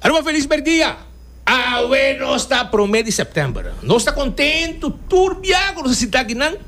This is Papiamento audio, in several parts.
Aruba felis merdia! Awe nos ta prome di september. Nos ta contentu tur bia cu nos a sinta aki nan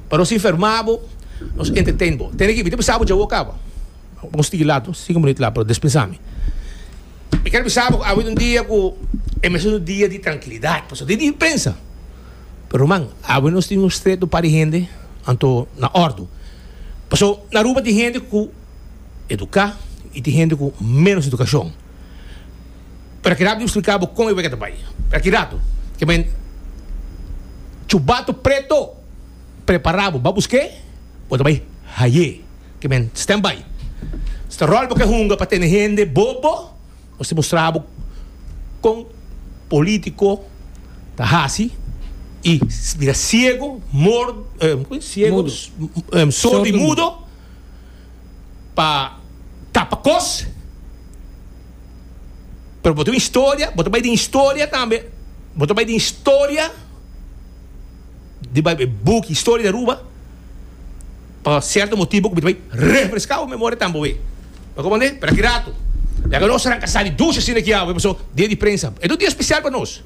pa nos informa bo, nos entertain bo. Tene ki bisa bo djawo a caba. Bon stiki lat no, cinco minut lat pero despinsa mi. Mi ker bisa bo cu awe ta un dia cu e mester ta un dia di trankilidad pasobra ta e dia di prensa. Pero man, awe nos tin un streto par di hende anto na ordu. Pasobra na Aruba tin hende cu. eduká i tin hende ku ménos edukashon. Pero a keda bo spliká bo kon e wega ta bai. Per aki ratu, ke men chubato preto prepará bo. Ba busk'é? Bo ta bai haié. Ke men stand by. Si ta ròl bo ke hunga pa tene hende bobo, nos tin mustrá bo kon polítiko ta hasi i bira siegu, mordo, siegu, sordo i mudo. pa tapa kos, pero bo ta un historia, bo ta bai den historia tambe, bo ta bai den historia di bai e buki Historia di Aruba pa sierto motibu ku bo ta bai refreská bo memoria tambe awe. Mi a kompran-dé? Pero aki ratu ya ku nos a ranka sali dushi asina aki awe pasobra dia di prensa. Es un dia spesial pa nos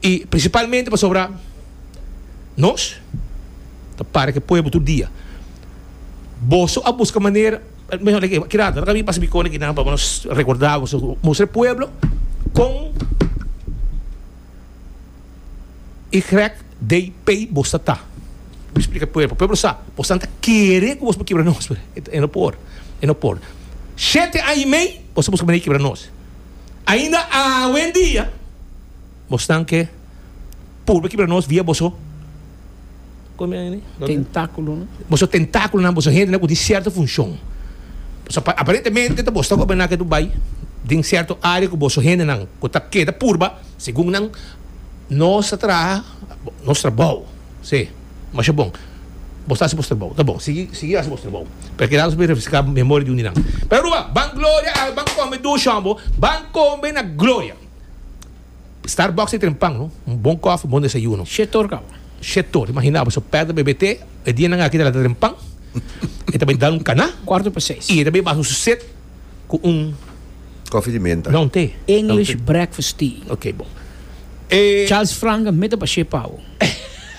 i prinsipalmente pasobra nos ta para ku e pueblo tur dia. Boso a buska manera, mihó like e kira anto, mi pasa mi kone kinan pa nos rekorda ku su mustra e pueblo kon i grèk dei pei bo sa ta. Mi splika e pueblo, pueblo sa, bo san ta kere ku bos por kibra nos, pero e no por, e no por. Shete aña i mei boso buska manera di kibra nos. Ainda awendia. Bo stan ke purba ki bira nos via boso tentáculonan. Boso tentáculonan, boso hendenan ku tin sierto funshon. So aparentemente ta boso ta kobra naketu bai den sierto área ku boso hendenan ku ta keda purba segun nan nos ta traha nos trabou. Sí, masha bon. Bo sta hasi bos trabou. Ta bon, sigui sigui hasi bos trabou. Pero keda nos por refreská memoria di un di nan. Pero Aruba, ban gloria al ban kombe dushon bo, ban kombe na gloria. Starbucks e tren pan, un bon kofi, un bon desayuno. Shetor kaba. Shetor, imagina bo, so pèrdè bebé te, e dianan aki ta lata tren pan, e ta bai dal un kaná, Kwarto pa seis. i e ta bai basa su set ku un, Kofi di menta. no, un te. English breakfast tea. Oké, bon. E. Charles Frank a mete pashé pa bo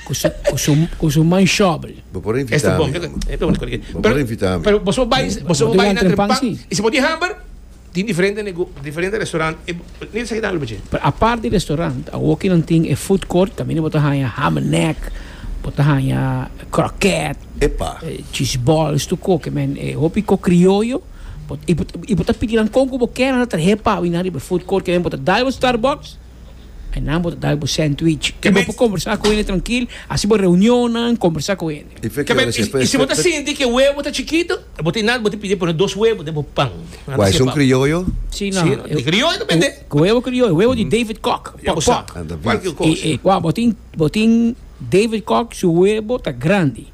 ku su, ku su, ku su man shòbel. Bo por a invitá Esta mi, bon, ke, hombre. e ta bonito, Bo por a invitá mi. Pero boso bai, boso Bo ta bai bai na na tren tren pan pan, si. i si bo tin hamber? Tin diferente nego diferente restaurant e mira sa kinan lo bache. Pero apart di restaurant awor ki nan tin e food court caminda bo ta haña ham and neck bo ta haña croquette Epa. cheese balls tu ko ke men e hopi ko crioyo bo y bo ta pidi nan kon ku bo kier nan ta trahe pao y nan riba e food court ke men bo ta dai bo starbucks. E nan bo ta dal bo sandwich. I bo por kombersá ku hende trankil, hasi bo reunionnan, kombersá ku hende. I si bo ta sinti ku e webo ta chikitu, bo ta inal bo ta pidi pone dos webo den bo pan. Wak esun krioyo? Si, nan. Si, e krioyo ta bendé. Ku webo krioyo, webo di David Kock, pòk pòk. Kualkier kos. Wak, bo tin, bo tin David Kock su webo ta grandi.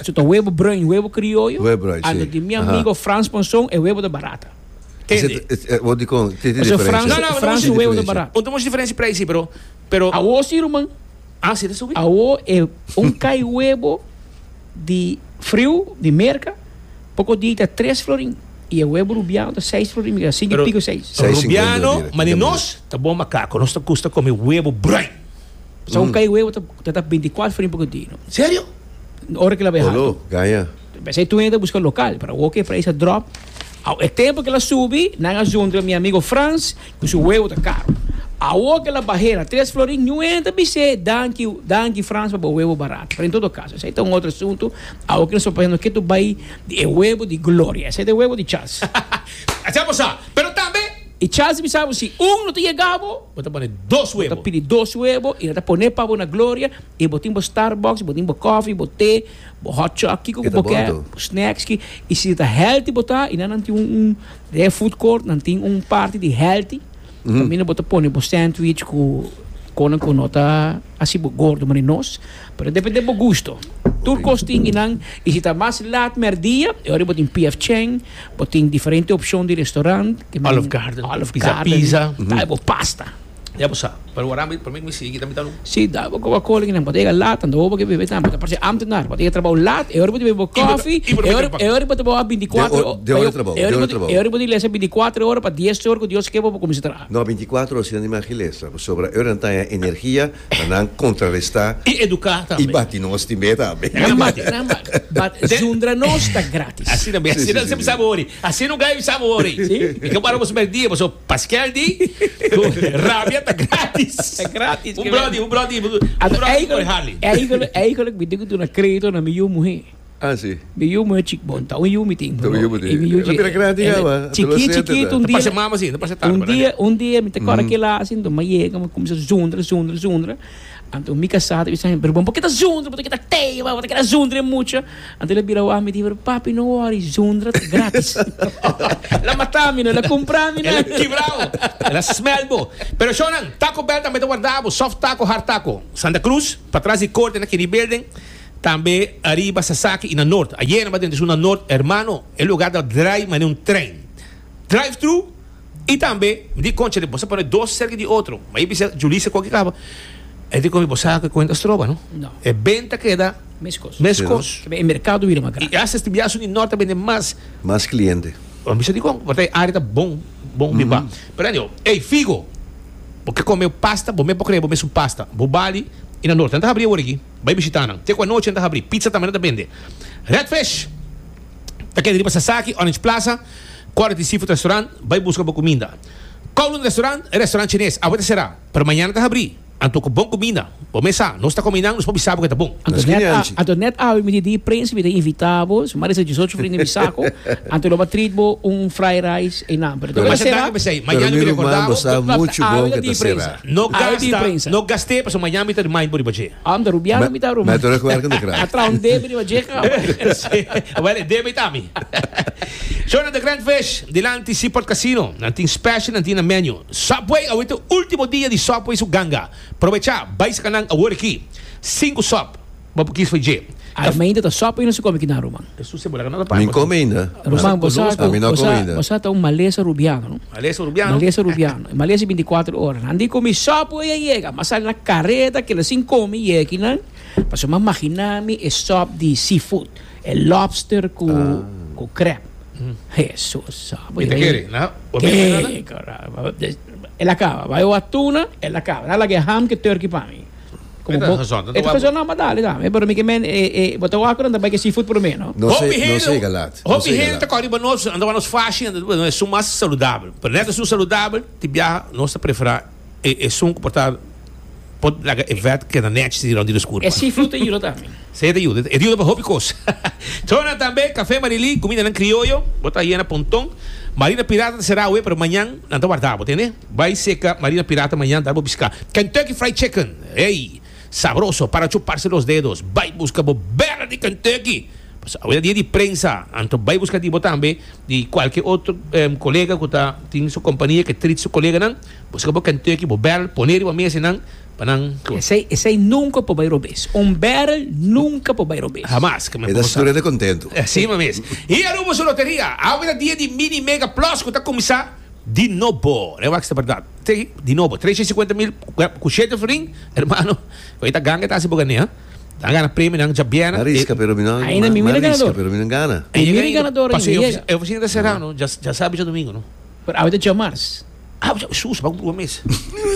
Su ta webo brùin, webo krioyo. Webo brùin, si. Ando di mi amigo Frans Monson, e webo ta barata. Tende? Bo dikon, tin tin diferensha? No, no, no moshi diferensha. Bo ta moshi diferensha p'rei si, pero, pero. Awo si, ruman. Ah, si ta subi? Awo e un kai webo di friu, di merka, poko dia i ta tres florin, i e webo rubiano ta seis florin, mi keda sinku i piko seis. Pero, rubiano, ma di nos ta bon makako, nos ta gusta komi webo bruin. Pasobra un kai webo ta ta binti kuater florin poko dia, no? Serio? Ora ki la bai hartu. Olo, gaya. P'esei Tuña ta buska lokal, pero awor ku e preis a dròp, awor e tempu ku el a subi, nan a zuntra mi amigo Frans, ku su weu ta karu. Awor ku el a bah'é na Tres Florin, Nuña ta bis'é, Danki, danki Frans pa bo weu barat. Pero en todo kaso, esei ta un otro asuntu, awor ku nos ta pensando ke tur bai di e weu di Gloria. Esei ta e weu di Charles. A si'a bo sa, pero tambe. I Charles ta bisa bo, si un no ta yega bo. Bo ta pone dos weu. Bo ta pidi dos weu, i nan ta poné pa bo na Gloria, i bo tin bo Starbucks, bo tin bo kòfi, bo té. Bo hot chop kiko ku bo ke bo snacks ki i si ta healthy bo ta i na nan tin un un de food court nan tin un parti di healthy kaminda bo ta pone bo sandwich ku konan ku no ta hasi bo gordo manera nos pero depende bo gusto tur kos tin i nan i si ta mas lat mèrdia e ora bo tin P. F. Chang bo tin diferente opshon di restaurant Olive Garden Olive Garden Pizza Pizza ta e bo pasta. Ya bo sa, pero waraha mi promé ku mi sigui tambe ta lu. Si ta bo koba koli nan botega a lat, anto bo ke bebe tambe. Ta parse ámtenár, bo ta yega trabou lat, e ora bo ta bebe bo kòfi, e ora bo ta wak bintikuatro ora. De ora di trabou? De ora di trabou? E ora bo ta lesa bintikuatro ora pa dies ora ku Dios ke bo pa bo kuminsá traha. No, bintikuatro ora si nan di magi lesa, pasobra e ora nan ta haña energia pa nan kontrarestá. I eduká tambe. I bati nos timbe tambe. Nan ka bati, nan ka bati. But zundra nos ta grátis. Asina mesmo, asina nan siempre sa bo wòri. Asina un gay sa bo wòri. Si. I ke bo para bo su mèk dia, paso. Paskel di cu rabia ta gratis. Ta gratis. Un brodi, un brodi, un brodi por hali. Eigenlijk, eigenlijk mi tin cu duna credito na mi yu muhe. Ah, si. Mi yu muhe chic bon, ta un yu mi tin. Ta un yu mi tin. E bira gratis caba. Chikit, chikit, un dia. Pasa mama si, no pasa tata. Un dia, un dia mi ta cora kila asin, do ma yega, mi cuminsa zundra, zundra, zundra. Anto mi casá ta bisa mi, pero bon por qué ta zundra, bo ta kita teva, bo ta keda zundra e mucha. Anto el a bira wak mi di, pero papi no worry, zundra ta gratis. El a mata mi no, el a cumpra mi nan. El a kibra bo, el a smelt bo. Pero shownan, Taco Bell tambe ta warda bo, soft taco, hard taco. Santa Cruz, patras di corte na Kennedy Building, tambe ariba Sasaki y na Noord. Ayer nan ba den di su na Noord, hermano, e lugar ta drai mane un trein. Drive-thru. I tambe mi di concha di bo sa pone dos cerca di otro, ma i bisa Julissa cu aki caba, e di comi bo sa cu cuenta stroba no, e benta keda mescos, e mercado bira mas grandi, i hasta este biaha suni Norte a bende mas, mas cliente, bo bisa dicon porta e area ta bon bon biba, pero anyhow, ey figo bo ke come pasta bo mes por crea bo mes un pasta, bo bali i na Norte nan ta habri awor aki, bay bishita nan, te cu anochi nan ta habri, pizza tambe nan ta bende, Red Fish ta keda riba Sasaki, Orange Plaza, Kòrda di Seafood Restaurant, bai buska bo kuminda. Kowloon Restaurant, e restaurant chines, awe ta será, pero mañana ta habrí. Anto ku bon kuminda, bo mes sa, nos ta kome nan, nos por bisa bo ku e ta bon. Anto net a, anto net awe midie di e prensa mi ta invitá bo, si Maria sa dioshocho frinden di Saco, anto lo ba treat bo un fried rice einan, pero anto ku ta será. Pero masha danki pa esei, mañana mi rekordá bo. Pero mi ruman, bo sa muchu bon ku e ta será. No gasta, no gast'é, pasobra mañana mi ta remind bo riba dje. Am ta rubiano mi ta rubio. Beto recuerdo de crack. Atrás un debe riba dje cama. Well, e debe ta mi. Shona the Grand Fish, dilanti Seaport Casino. Nan tin special, nan tin na menu. Subway, awe ta ultimo dia di Subway su ganga. Probecha, bai saka nan awor aki. Cinco sub, bo por kies for dje. Ai mi ainda ta sopa y no si come kinan ruman. E su cebola no ta paina. Mi come ainda. Ruman bosa cu ami no come ainda. Bosa ta un malesa rubiano no. Malesa rubiano. Malesa rubiano. E malesa binticuatro ora no. Andi comi sopo y a yega. Mi a sali na careta kila sin come yega kinan pasobra mi a magina mi e sop di seafood e lobster cu crab. Hesus sopo. Y ta kere na. Kere. Elakaba. Bay o atuna elakaba. Na laga e ham cu e turkey pa mi. Como Eta bo- razón, tanto Eta guapo. razón, no, ma dale dan. Eh, pero mi que men, eh, eh, bo ta waku dan, ta bai que seafood por me, no? No Hopi se- no hende- sega lat, no Hopi sega hende lat. ta kòrdi pa nos, anda pa nos fashi, anda pa nos sun mas saludabel. Pero nèt asun saludabel, ti biaha nos ta preferá e e sun ku por ta por laga e vèt keda nèchi si rònt di nos kurpa. E seafood ta yuda tambe. Sí, e ta yuda, e ta yuda pa hopi kos. Trona tambe, Café Marilí, kumindanan krioyo, bo ta yena ponton. Marina Pirata ta será awe, pero mañan nan ta wardá bo, tende? Bai seka Marina Pirata mañan dar bo biska Kentucky Fried Chicken ey sabroso para chuparse los dedos bai buska bo bela di Kentucky paso awe ta dia di prensa anto bai buska di bo tambe di cualkier otro colega cu ta tin su compania ke trit su coleganan buska bo Kentucky bo barrel pone riba mesa y nan pa nan Esey esey nunca por bai robes. Un barrel nunca por bai robes. Hamas ke men E por ta gozá. sturende contento. Asina mes. Hia Rumoso Loteria, awe ta dia di Mini Mega Plus cu ta cuminsa. Di nobo, e wak sta berdad. Di nobo, tresha i sikuenta mil ku shete fling, hermano, ku ei ta ganga e ta hasi bo gane, ha. Nan a gana premionan djabièrnè. Ariska pero mi no a ariska pero mi no a gana. Paso e ofisina ta será, no, dja sabi djadomingo, no. Pero awe ta dja mars. Awe dja, sus, a ban ku grua mes.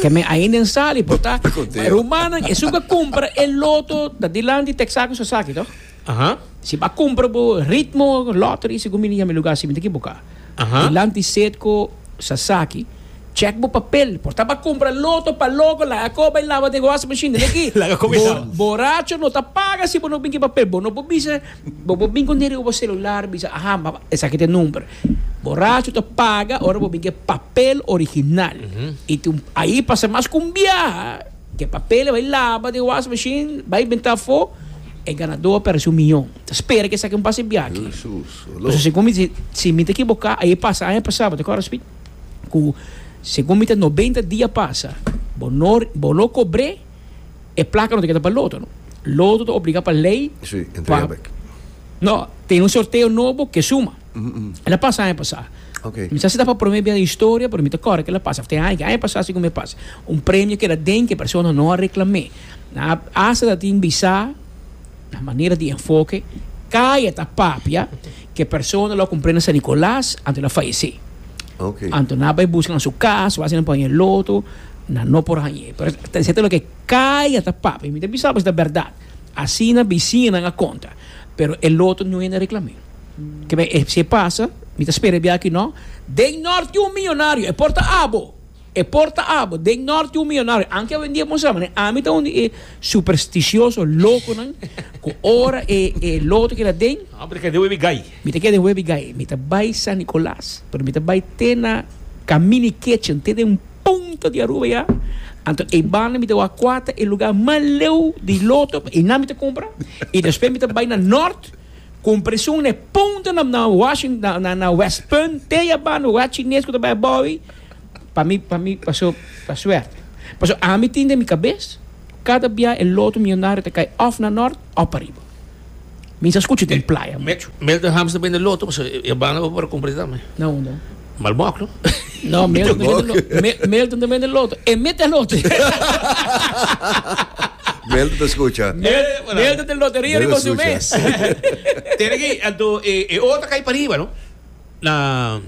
Te me ainda en sali, por ta, rumannan, esun ku a kumpra e loto ta dilanti texaco sasaki, to. Aha. Si bo a cumpra bo ritmo lottery segun mi liga mi lugar si mi ta equivoca. Aha. Dilanti Cedco, Sasaki, check bo papel por ta bo a cumpra loto pa loco laga coba y lava den washing machine den aki. Laga coba y lava. Boracho no ta paga si bo no bin ki papel bo no por bisa bo por bin con riba bo celular bisa aha esaki ta e number boracho ta paga ora bo bin ki papel original y tin ahi pasa mas con biaha. Ke papel e bai laba den wash machine, bai benta afó, e ganadó a pèrdese un miyon. Ta spera ke esaki un pase biaki. Pasobra segun mi, si mi ta ekiboká, ayé pasa, aña pasá, bo ta kòrda Speed? ku segun mi ta nobenta dia a pasa, bo no, bo no kobr'é, e plaka no ta keda pa Loto, no. Loto ta obligá pa lei pa, no, ten un sorteo nobo ke suma. El a pasa aña pasá. Okay. Mi sa si ta pa prome bia na historia, pero mi ta corre que el a pasa. Te hay que aña pasá sigun mi pasa. Un premio que la den que persona no a reclamé. Na hasta ta tin bisa na manera di enfoque caya ta papia que persona lo compré na San Nicolas anto na fallece. Okay. Anto na bay busca na su cas, wasi na poñe loto, na no por hañe. Pero ta lo que caya ta papia. Mi ta bisa pues ta verdad. Asina bisiñanan a konta. Pero e loto no hende reklam'é. Keme e si e pasa, mi ta spera e biaha aki nò. Den nòrti un miyonario, e por ta abo, e por ta abo, den nòrti un miyonario. Anke awendia e mostra mané ami ta un di e superstishoso, lokonan, ku ora e loto keda den. Hopi di kende wei wei gai. Mi ta ke den Webigai, mi ta bai San Nicolas, pero mi ta bai te na Camini Kitchen, te den un punto di Aruba ya, anto e banda mi ta wak kua ta e luga mas leu di loto pa einan mi ta kumpra, i despues mi ta bai na Nort, con presion na e punto na na Washing na na na West Punt, te ya banda wak chines ku ta bai abou ei, pa mi pa mi paso ta suerte. Paso ami tin den mi kabes, kada bia e loto millonario ta kai of na Nort of pa Ariba. Misa scuchi den playa mucho. Mel den hamster bende loto pasobra e banda bo por cumpri tambe. Na unda? Malbok no? No, Milton ta bende loto. Milton ta bende loto. E mi ta loto. Milton ta scucha. Milton ta loteria riba su mes. Tene ki anto e otro cai pariba no. Na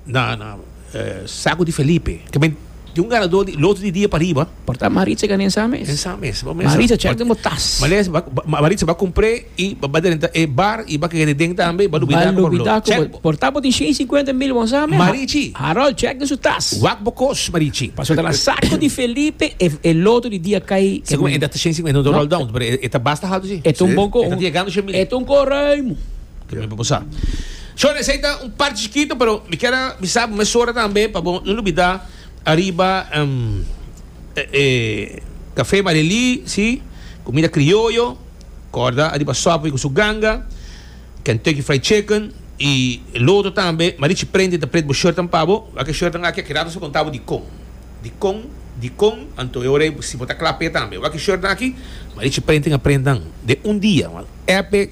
na na Sago di Felipe. Ke men tin un ganador di loto di dia pariba. Por ta Maritza gana ensa mes. Ensa mes. Maritza check den bo tas. Maritza ba Maritza ba compre y ba ba den ta e bar y ba ke den tambe ba lubida ku por loto. Check bo. Por ta bo tin shen y cincuenta mil bo ensa mes. Marichi. Harold check den su tas. Wak bo kos Marichi. Paso ta na Sago di Felipe e loto di dia kai. Segun mi e ta shen y cincuenta no ta roll down pero e ta basta haltu si. E ta un bon kor. E ta tigando shen mil. E ta un kor ruim. Kico mi por cusa? So, esey ta un parchi chikito, pero mi kier a bisa bo mesora tambe pa bo no lubida ariba e cafe Maria Elise, comida crioyo, corda ariba Subway cu su ganga, Kentucky Fried Chicken y lootro tambe. Marichi prende y ta pret bo shirtnan pa bo. Wak e shirtnan aki, aki rato a conta bo dicon, dicon, dicon, anto e ora ey si bo ta cla p'e tambe. Wak e shirtnan aki, Marichi prende a prendan den un dia, Epe.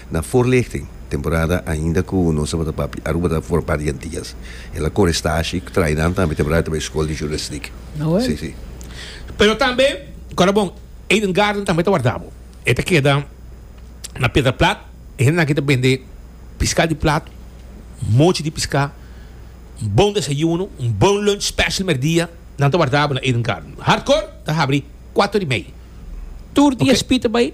Na voorlichting temporada ainda ku nos tabata papia Aruba ta for part di Antillas. El a kore stashi ku trai nan tambe temporada ta bay skol di journalistiek. Awor. Si si. Pero tambe kora bon Eden Garden tambe ta warda bo. E ta keda na Pedra Plat. E hende nan aki ta bende piska di plat, mochi di piska, un bon desayuno, un bon lunch special merdia. Nan ta warda bo na Eden Garden. Hardcore ta habri kuato di mei. Tur di espi ta bay.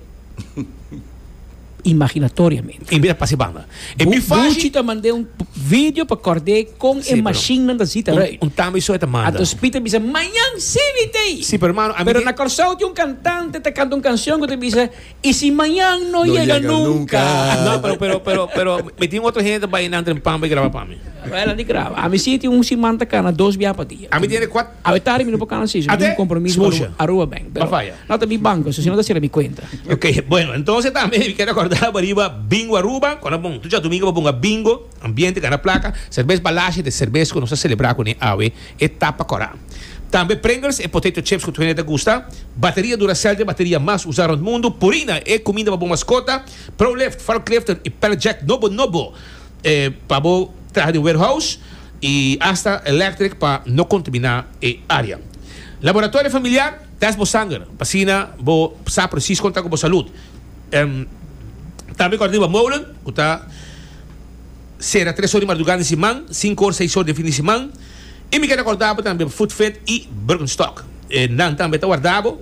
imaginatoriamente. E mira pa se banda. E mi faci. Buchi ta mand'e un video pa kòrd'e kon e mashinnan ta sita rei. Un tambe so e ta manda. Anto Spita bisa, Mañan si mi ta ei. Si, pero mano, a mi. Pero na Kòrsou tin un kantante ta kanta un kanshon ku ta bisa, I si mañan no yega nunka. No, pero, pero, pero, pero mi tin otro hende ta bai nan trempan bai graba pa mi. Bai landi graba. A mi si tin un siman ta kana dos biaha pa dia. A mi tin e kuat. Awe tardi mi no por cana si mi tin un compromiso pa Aruba, Aruba ben, pero no ta mi banco so si no ta cera mi cuenta. Ok, bueno entonces tambe mi quier recorda bo riba Bingo Aruba cuando bon tu diadomingo bo ponga bingo, ambiente gana placa, Cervez Palacio e te cervez cu nos ta celebra cune awe e ta pa cora. Tambe Pringles e potato chips cu tur hende ta gusta, bateria Duracell den bateria mas usa rond mundo, Purina e cuminda pa bo mascota, Pro Lift, Valk Lifter y Pallet Jack nobo nobo pa bo traha den warehouse. y hasta electric pa no contamina e area. Laboratorio familiar, test bo sanger pa asina bo sa precies con ta cu bo salud. Tambe cor riba molen cu ta cera tres or di mardugada di siman, cinco or, seis or di fin di siman. Y mi keda corda bo tambe Food Fit y Birkenstock. Nan tambe ta warda bo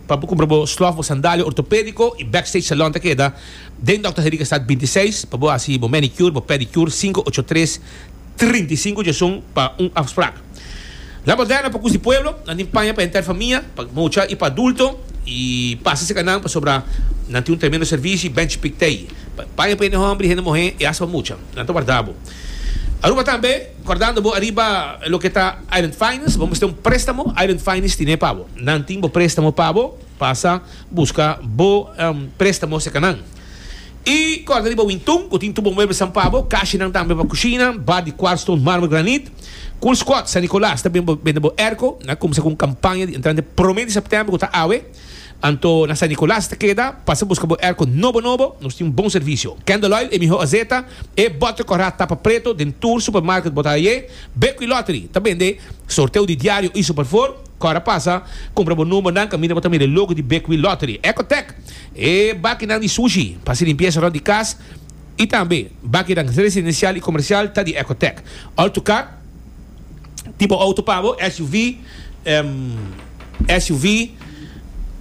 pa bo cumpra bo slof, bo sandalia ortopedico y backstage salon ta keda. Den Dòkter Henriquestad binti i seis pa bo hasi bo manicure, bo pedicure sinku ocho tres trinta i sinku djesun pa un afsprak. La Moderna pa Kusi Pueblo nan tin paña pa henter famia, pa mucha i pa adulto i pasa cerca nan pasobra nan tin un tremendo servishi benchi pik tei pa paña pa hende hombri, hende muhé i hasta pa mucha. Nan ta warda bo. Aruba tambe kòrdando bo ariba loke ta Island Finance, bo mester un préstamo Island Finance tine pa bo. Nan tin bo préstamo pa bo. Pasa buska bo prestamos e kanan. I kòrda di bo wintun ku tin tur bo muebelsan pa bo, kashinan tambe pa kushina, bar di kwart stone, marmer, granit. Cool Squad San Nicolas ta bini bende bo erko. Nan a kumsa ku un kampaña di entrante promé di sèptèmber ku ta awe. Anto na San Nicolas ta keda. Pasa buska bo erko nobo nobo. Nos tin bon servisio. Candle Oil, e mihó azeta, e bòter kòrá tapa preto den tur supermarket bo ta hai'é. Bekwilottery ta bende sorteo di diario i superfor. Kòrda pasa, kumpra bo numbernan kaminda bo ta mira e logo di Bekwil Lottery. Ecotec, e bakinan di sushi pa hasi limpiesa rònt di kas i tambe bakinan residensial i komersial ta di Ecotec. Ol tu kar, tipo outo pa bo, SUV, SUV,